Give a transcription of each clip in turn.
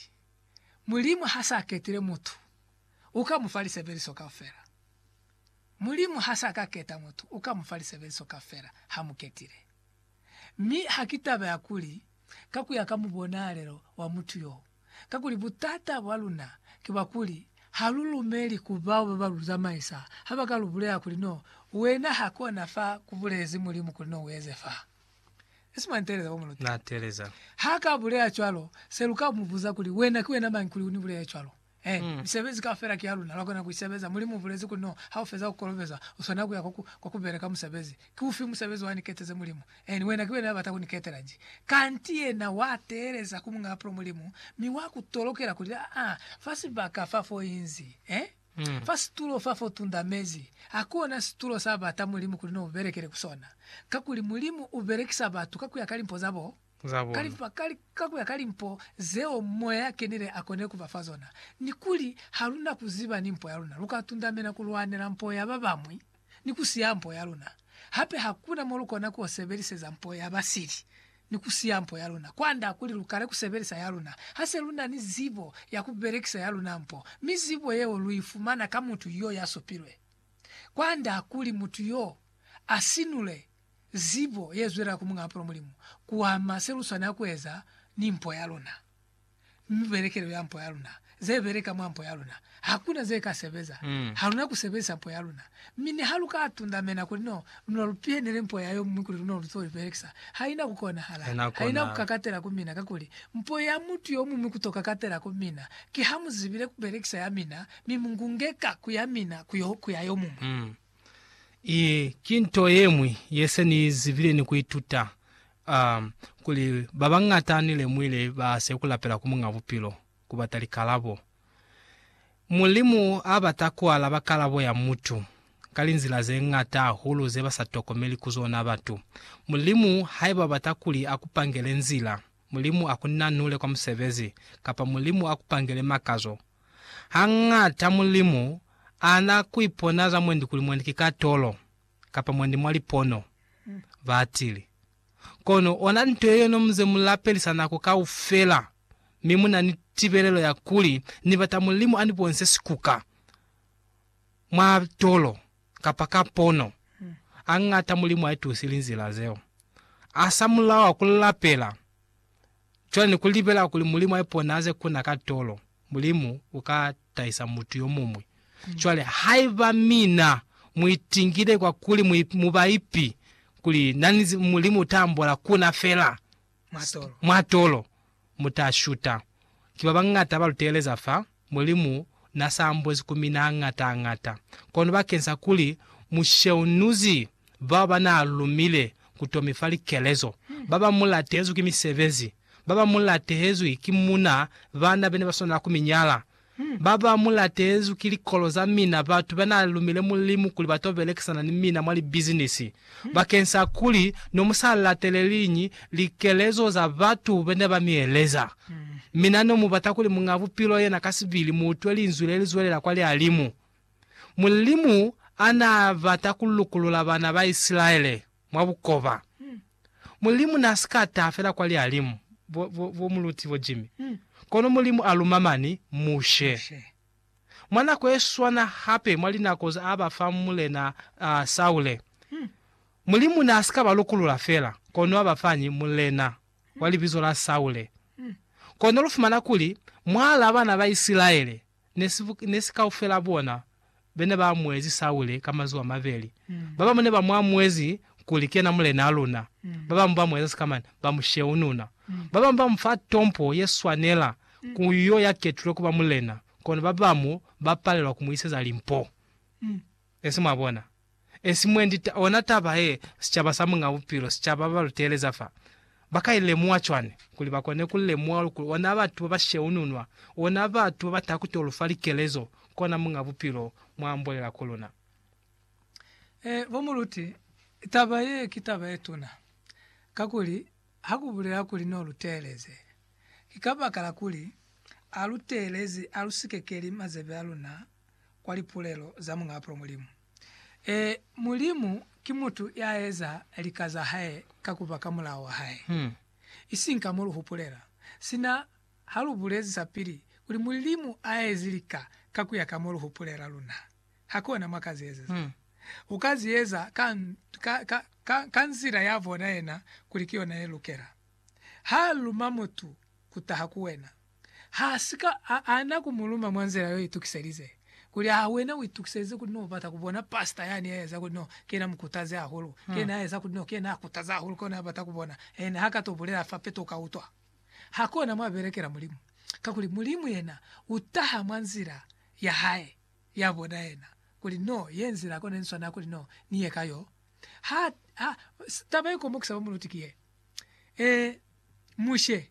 Nnete, Mulimu ha sa ketile mutu, u ka mu fa lisebeliso kaufela. Mulimu ha sa ka keta mutu, u ka mu fa lisebeliso kaufela ha mu ketile. Mi ha ki taba ya kuli ka ku ya ka mubonalelo wa mutu yo, kakuli butata bwa luna ki bwa kuli ha lu lumeli ku bao ba ba lu zamaisa ha ba ka lu bulela kuli no, wena ha kona fa ku bulezi Mulimu kuli no u eze fa. Na teleza. Ha ka bulela cwalo, se lu ka mu buza kuli, Wena ki wena mañi kuli u ni bulele cwalo? Eh, misebezi kaufela ki ya luna, lwa kona ku i sebeza. Mulimu u bulezi kuli, No, ha u feza ku kolobezwa, u swanela ku ya kwa ku, kwa ku beleka musebezi. Ki ufi musebezi wa ni keteze Mulimu? Eh, ni wena ki wena ya bata ku ni ketela nji. Kanti yena wa teeleza ku Muñ'a Pulo Mulimu, mi wa ku tolokela kuli, Aa, fa sibaka fa fo inzi. Eh? Fa situlo fa fo tunda mezi, hakona situlo sa bata Mulimu kuli no belekele ku sona, kakuli Mulimu u belekisa batu ka kuya ka limpo za bo, ka kuya ka limpo zeo Moya ya Kenile a konile ku ba fa zona. Ni kuli, ha lu na ku ziba ni mpo ya luna, lu ka tundamena ku lwanela mpo ya ba bamwi. ni ku siya mpo ya luna. Hape ha ku na mo lu kona ku sebeliseza mpo ya ba sili ni ku siya mpo ya luna kwand'a kuli lu kale ku sebelisa ya luna. Ha se lu na ni zibo ya ku belekisa ya luna mpo, mi zibo yeo lu i fumana ka mutu yo ya supilwe. Kwand'a kuli mutu yo a sinule zibo ye zwelela ku mu ngapula Mulimu, ku ama se lu swanela ku eza ni mpo ya luna. mi belekelo ya mpo yaluna, ze beleka mwa mpo yaluna, hakuna ze ka sebeza. Haluna ku sebezisa mpo yaluna. Mi niha lu ka tundamena kuli no, lu no lu pihenele mpo ya yomuñwi kuli lu no lu to i belekisa, haina ku konahala. Haina ku kakatela ku mina, kakuli mpo ya mutu yomuñwi ku to kakatela ku mina, ki ha mu zibile ku belekisa ya mina, mi mu ngungeka ku ya mina ku ya yomuñwi. Iyi ki nto ye ñwi ye se ni zibile ni ku ituta, um, kuli ba bañata ni lemuile ba se ku lapela ku Muñ'a Bupilo, ku bata likalabo. Mulimu a bata ku alaba kalabo ya mutu ka linzila ze ñata hahulu ze ba sa tokomeli ku zona batu. Mulimu, haiba u bata kuli a ku pangele nzila, Mulimu akunanule kwa musebezi, kapa Mulimu akupangele makazo. Hañata Mulimu ana kuipona za mwendi kuli mwendi ki katolo, kapa mwendi mwa lipono, batili. Kono ona nto yeyo nomuze mulapelisa nako kaufela, mi munani tibelelo ya kuli, Nibata Mulimu anibonise sikuka. mwa tolo kapa ka pono, añata Mulimu aitusi linzila zeo. Asamulaho ku lapela cwale ni ku libela kuli Mulimu aipone aze kuna ka tolo, Mulimu uka tahisa mutu yomuñwi. Cwale, haiba mina muitingile kwa kuli mubaipi kuli nani Mulimu uta ambola kuna fela, mwa tolo, mu ta shuta. Ki babañata ba lu teeleza fa, Mulimu na sa ambozi ku mina hañata-hañata. Kono bakeng sa kuli mu sheunuzi bao ba naa lumile ku to mi fa likelezo, ba bañwi mu latehezwi ki misebezi, ba bañwi mu latehezwi ki muna, bana be ne ba swanela ku mi nyala, Ba ba mu latezwi ki likolo za mina, batu ba n'a lumile Mulimu kuli ba t'o belekisana ni mina mwa libizinisi. Bakeng sa kuli ne mu sa lateleliñi likelezo za batu be ne ba mi eleza, mina ne mu bata kuli Muñ'a Bupilo yena ka sibili mu utwe linzwi le li zwelela kwa lihalimu. Mulimu a n'a bata ku lukulula bana ba Isilaele. mwa bukoba. Mulimu n'a si ka taha fela kwa Lialimu, bo, bo, bo Muluti bo Jimmy, kono Mulimu a luma mani, Mushe. Mwa nako ye swana hape mwa linako z'a ba fa Mulena, uh, Saule, Mulimu n'a si ka ba lukulula fela, kono a ba fañi mulena wa libizo la Saule. Kono lu fumana kuli, mwal'a bana ba Isilaele, ne si kaufela bona bene ba amuezi Saule ka mazuba a mabeli. Babamu ne ba mu amuezi kuli kena mulenaa luna, babamu ba mu eza sikamani, ba mu sheununa. Babamu ba mu fa tompo ye swanela ku yo ya ketulwe kuba mulena, kono babamu ba palelwa ku mu iseza limpo. Esi mwabona, esi mwendi ta, ona taba ye, sicaba sa Muñ'a Bupilo, sicaba ba ba lu teeleza fa, ba ka i lemuha cwani? Kuli ba kone ku lemuha luli kuli ona batu ba ba sheununwa, ona batu ba ba taha ku to lu fa likelezo, kona Muñ'a Bupilo mwa ambolela ku luna. E, bo muluti, taba ye ki taba ye tuna, kakuli ha ku bulela kuli no lu teeleze, ki kabakala kuli a lu teelezi, a lu sikekeli mazebe a luna, kwa lipulelo za Muñ'apulo Mulimu. Ee, Mulimu ki mutu ya eza lika za hae ka ku ba ka mulao wa hae, isiñi ka mo lu hupulela. Sina ha lu bulezi sapili kuli Mulimu a ezi lika ka ku ya ka mo lu hupulela, luna hakona mwa ka zi ezeza. U ka zi eza ka, ka, ka, ka, ka nzila ya bona yena kuli ki yona ye lukela. Ha luma mutu ku taha ku wena. Ha si ka a ana ku mu luma mwa nzila yo itukiselize. Kuli, Aa, wena u itukiselize kuli no bata ku bona pastor yani ya eza kuli no ki yena mukutazi hahulu, ki yena ya eza kuli no ki yena a kutaza hahulu, ki ona ya bata ku bona, and ha ka to bulela fa peto u ka utwa? Ha ki ona mwa belekela Mulimu. Kakuli, Mulimu yena u taha mwa nzila ya Hae, ya bona yena, kuli no ye nzila kona ni swanela kuli no ni ye ka yo. Ha, ha, taba ye komokisa ba mu luti ki ye, Ee, Mushe.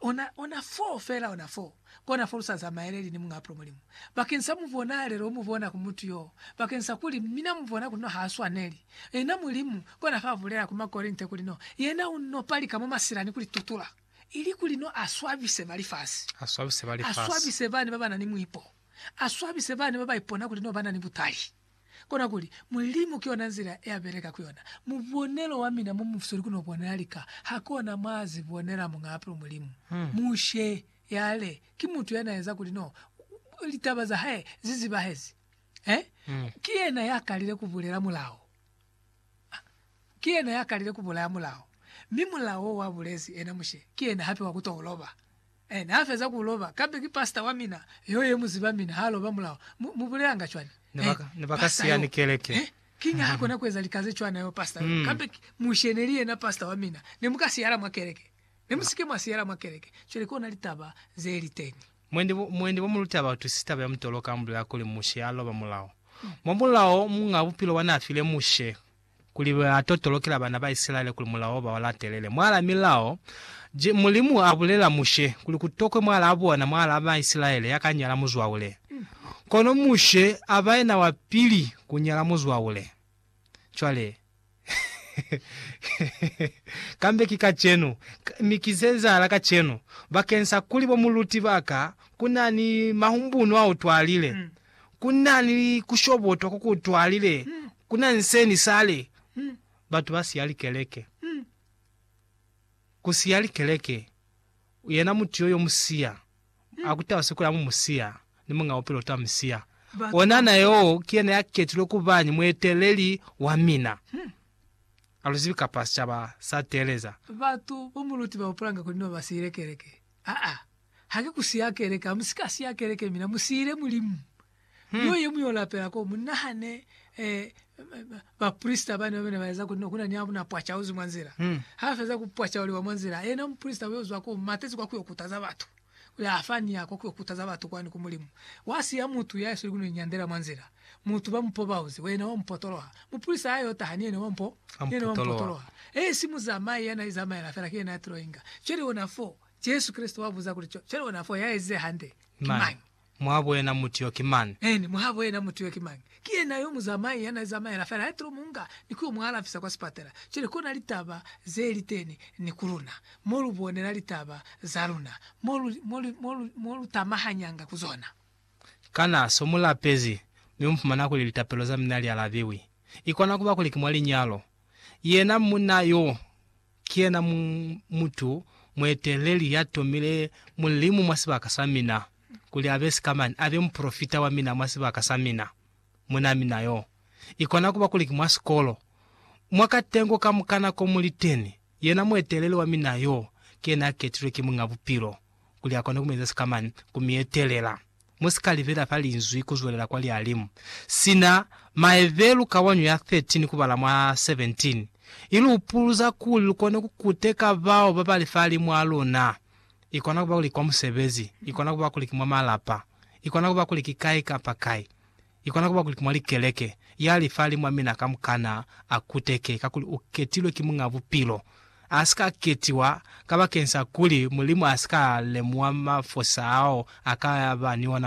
Ona, ona foo, fela ona foo, kona fo lu sa zamaeleli ni Muñaa Pula Mulimu, bakeng sa mubonaalelo o mubona ku mutu yoo, bakeng sa kuli mina mubona kuli no ha swaneli. Yena Mulimu, kona fa bulela ku Makorinte kuli no, Yena u no palika mwa masila ni ku li tutula, ili kuli no a swabise ba lifasi, a swabise ba lifasi, a swabise bani ba ba na ni muipo, a swabise bani ba ba ipona kuli no ba na ni butali. Kona kuli, Mulimu ki yona nzila ya beleka ku yona. Mubonelo wa mina mo musweli ku no bonela lika, ha kona mwa zi bonela Muñaa Pilu Mulimu. Mushe yale ki mutu ya na eza kuli no litaba za hae zi zibahezi. Eh? Ki yena ya kalile ku bulela mulao. Ah, ki yena ya kalile ku bulaya mulao. Mi mulao wo wa bulezi ena Mushe, ki yena hape wa ku to u loba. Ene ha feza ku loba, kambe ki pastor wa mina yo ye mu ziba mina ha loba mulaho. Mu, mu bulelanga cwani? Eh, Ne ba ka siya ni keleke. Eh, kiñi ha kona ku eza lika ze cwana yo pastor yo? Kambe ki Mushe ne li yena pastor wa mina. Ne mu ka siyala mwa keleke. Ne mu si ke mwa siyala mwa keleke. Cwale ki ona litaba ze li teñi. Mwendi bo, mwendi bo mu luta batu sita ba ya mutolo ka mbulela kuli Mushe a loba mulaho. Mwa mulaho, Muñaa Bupilo wa n'a file Mushe kuli ba totolokela bana ba Isilaele kuli mulao ba u latelele. Mwaala milao je, Mulimu a bulela Mushe kuli ku tokwe mwaalaa bona, mwaalaa ba Isilaele, ya ka nyala muzwaule. Kono Mushe a ba yena wa pili ku nyala muzwaule. Cwale, kambe ki kacenu, mi ki ze ezahala kacenu, bakeñsa kuli bo muluti ba ka, ku na ni mahumbunu ao twalile. ku na ni kushobotwa ko ku twalile ku na nseni sale batu ba siya likeleke. Ku siya likeleke, yena mutu yo yo mu siya, a ku taba sikula mu mu siya, ni Muñ'a Bupilo uta mu siya. Ona na yo ki yena ya ketilwe ku ba ni mueteleli wa mina. A lu zibi kapa sicaba sa teeleza. Batu bo mu luti ba hupulanga kuli no ba siile keleke. Aa, ha ki ku siya keleke, ha mu si ka siya keleke, mina mu siyile Mulimu. Niyo ye mu yo lapela koo. Mu nahane eh, baprisita bani babene ba eza kuli ku na ni a na pwacauzi mwa nzila. Ha ba feza ku pwacauliwa mwa nzila, yena muprisita u yo zwa koo, matezi kwa ku yo kutaza batu. Kuli a fa ni ya kwa ku yo kutaza batu kwani ku Mulimu. Wa siya mutu ya isweli ku no inyandela mwa nzila. Mutu ba mu pobauze, Wena wa mu potoloha. Mupulisa a y'o taha ni yena wa mu potoloha. Ee, si muzamai ya na izamaela fela, ki yena ya t'o inga. Cwale ona f'o, Jesu Kreste wa buza kuli, Cwale ona f'o, ya ezize hande ki mañi? Muhabo yena mutu y'o ki mañi? Eeni, muhabo yena mutu y'o ki mañi? Ki yena yo muzamai ya na izamaela fela, ya t'o mu nga ni ku y'o mu alafisa kwa sipatela. Cwale kona litaba ze li teni ni ku luna, mo lu bonela litaba za luna, mo lu tamahanyanga ku zona. Kana so mu lapezi mi mu fumana kuli litapelo za mina li alabiwi? I kona kuba kuli ki mwa linyalo. Yena munna yo ki yena mu, mutu mueteleli ya tomile Mulimu mwa sibaka sa mina, kuli a be sikamani, a be mupolofita wa mina mwa sibaka sa mina. Munna mina yo, i kona kuba kuli ki mwa sikolo, mwa katengo kamukana ko mu liteni, yena mueteleli wa mina yo ki yena a ketilwe ki Muñ'a Bupilo. kuli akone ku mu eza sikamani, ku mi etelela. Mu si ka libela fa Linzwi ku zwelela kwa lialimu. Sina maebe lu ka wa ño ya 13 ku bala mwa 17, i lu upuluza kuli lu kone ku kuteka bao ba ba li fahalimu a luna. I kona ku ba kuli ki kwa musebezi, i kona ku ba kuli ki mwa malapa, i kona ku ba kuli ki kai kapa kai. Ikona kuba kuli ki mwa likeleke ya lifali mwa mina kamukana a kuteke kakuli u ketilwe ki Muñ'a Bupilo. A si ka ketiwa kabakeng sa kuli Mulimu a si ka lemuha mafosa ao a ka ba ni ona.